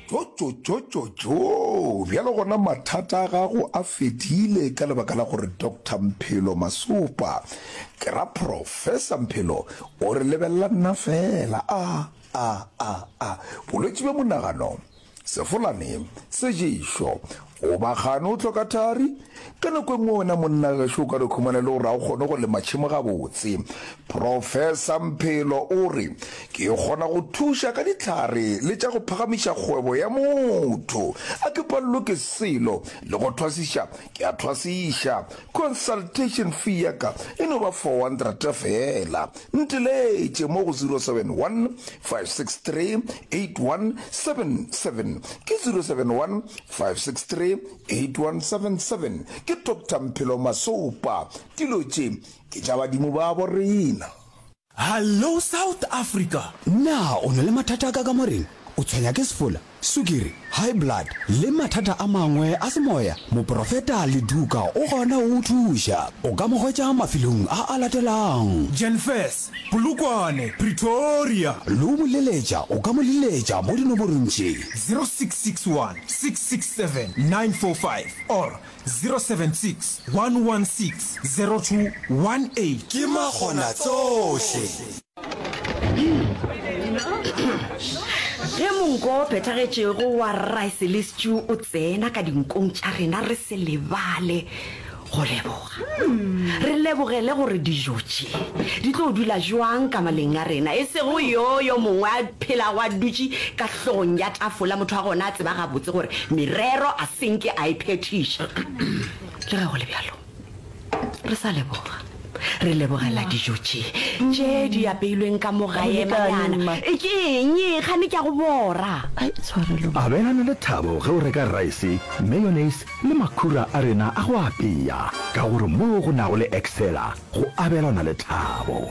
tšotšotšotšotšo bjalo gona mathata a gago a fedile ka lebaka la gore dr mphelo masopa ke ra professor mphelo o re lebelela nna fela a a a a bolwetši bja monagano sefolane seješo Goba gane o hloka thari? Ka nako e nngwe wena monna gešo o ka dikhumana e le gore ga o kgone go lema tšhemo gabotse. Profesa Mphelo o re, Ke kgona go thuša ka dihlare le tša go phagamiša kgwebo ya motho. A ke palelwe ke selo, le go thwasiša ke a thwasiša. Consultation fee ya ka e no ba 400 feela. Nteletše mo go 0715638177. Ke 0715638177. Ke Doctor Mphelo Masopa. Dilo tše ke tša badimo babo rena. Hallo South Africa! Na o na le mathata a ka kamoreng? O tshwenya ke sefola, sukiri, high blood le mathata a mangwe a semoya? Moporofeta Leduka o gona go go thuša. O ka mo hwetša mafelong a a latelago. Jenfess, Polokwane, Pretoria. Le o mo leletša, o ka mo leletša mo dinoborong tše. 0661 667 945 or 076 116 0218. Ke Makgonatsohle. Ge monko o phethagetšego wa rice le stew o tsena ka dinkong tša rena, re se lebale go leboga. Re lebogele gore dijo tše di tlo dula bjang ka maleng a rena, e sego yo yo mongwe a phelago a dutše ka hlogong ya tafola, motho wa gona a tseba gabotse gore merero a se nke a e phethiša. Le ge go le bjalo, re sa leboga. Re lebogela dijo tše tše di apeilweng ka mo gae. Manyana, ke eng? Gane ke ya go bora. Abelana le thabo ge o reka raese, mayonnaise le makhura a rena a go apea, ka gore moo go nago le Excella, go abelana le thabo.